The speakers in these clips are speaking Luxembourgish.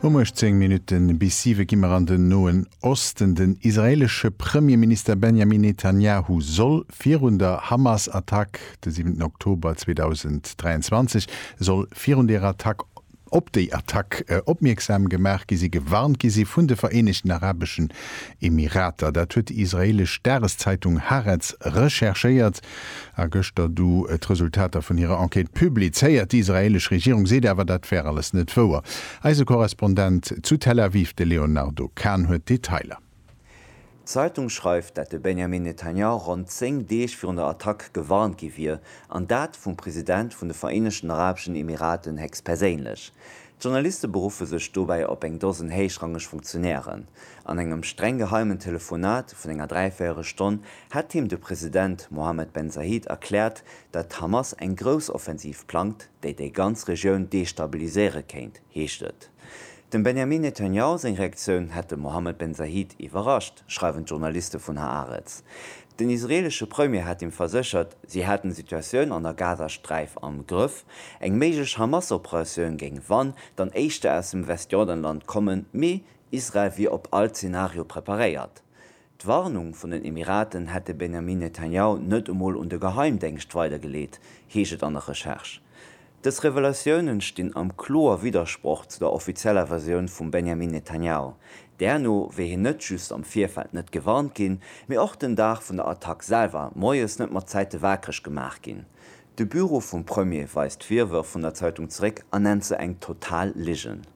Um 18 Minutte bis siwe gi mer an den Noen Osten. Den israeelesche Premierminister Benjamin Netanjahu soll virun der Hamas-Attack de siwenten Oktober 2023 soll virun deer Attack op déi Attack opmierksam gemaach gi si, gewarnt gi si vun de Vereenegten Arabeschen Emirater. Dat huet déi israeelesch Dageszeitung Haaretz recherchéiert. A gëschter du d'Resultater vun hirer Enquête publizéiert. Déi israeelesch Regierung seet awer, dat wär alles net wouer. Eise Korrespondent zu Tel Aviv, de Léonardo Kahn, huet d'Detailer. D'Zeitung schreift, dat de Benjamin Netanyahu ronn zéng Deeg virun der Attack gewarnt gi wier, an dat vum President vun de Vereenegten Arabeschen Emiraten héchstperséinlech. D'Journaliste beruffe sech dobäi op eng Dosen héichrangeg Funktionären. An engem streng geheimen Telefonat vun enger dräivéiereg Stonn hätt him de President Mohammed Ben Zayed erkläert, datt d'Hamas eng grouss Offensiv plangt, déi déi ganz Regioun destabiliséiere kéint, heescht et. Dem Benjamin Netanjahu seng Reaktioun hätt de Mohammed Ben Zayed iwwerrascht. schreiwen d'Journaliste vun Haaretz. Den israeelesche Premier hat him verséchert, si hätten d'Situatioun an der Gazasträif am Grëff. Eng méiglech Hamas-Operatioun géing wann dann éischter aus dem Westjordanland kommen, mee Israel wier op all Zenario preparéiert. D'Warnung vun den Emiraten hätt de Benjamin Netanjahu net emol un de Geheimdéngscht weidergeleet, heescht et an der Recherche. Dës Revelatiounen stinn am kloer Widdersproch zu der offizieller Versioun vum Benjamin Netanyahu, därno wier hien net just am Virfeld net gewarnt ginn, mee och den Dag vun der Attack selwer moies net mat Zäite waakreg gemaach ginn. De Büro vum Premier weist d'Virwërf vun der Zeitung zeréck a nennt se eng total Ligen.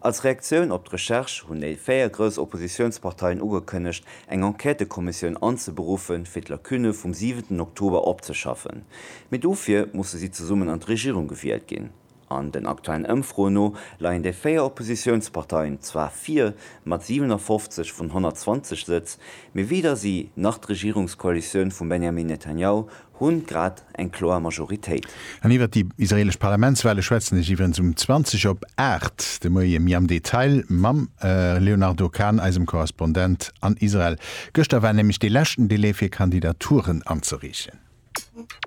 Als Reaktioun op d'Recherche hunn déi véier grouss Oppositiounsparteien ugekënnegt, eng Enquêtëkommissioun anzeberuffen, fir d'Lacunne vum siwenten Oktober opzeschaffen. Mee dofir musse si zesummen an d'Regierung gewielt ginn. An den aktuellen Ëmfroen no leien déi véier Oppositiounsparteien zwar vir, mat 57 vun 120 Sëtz, mee weder si nach d'Regierungskoalitioun vum Benjamin Netanjahu Hunn grad eng kloer Majoritéit. An iwwert déi israelesch Parlamentswale schwätzen ech iwwerens um 20 op 8 de Moie méi am Detail mam Léonardo Kahn, eisem Korrespondent an Israel. Gëschter war nämlech dee leschten Delai fir Kandidaturen anzereechen.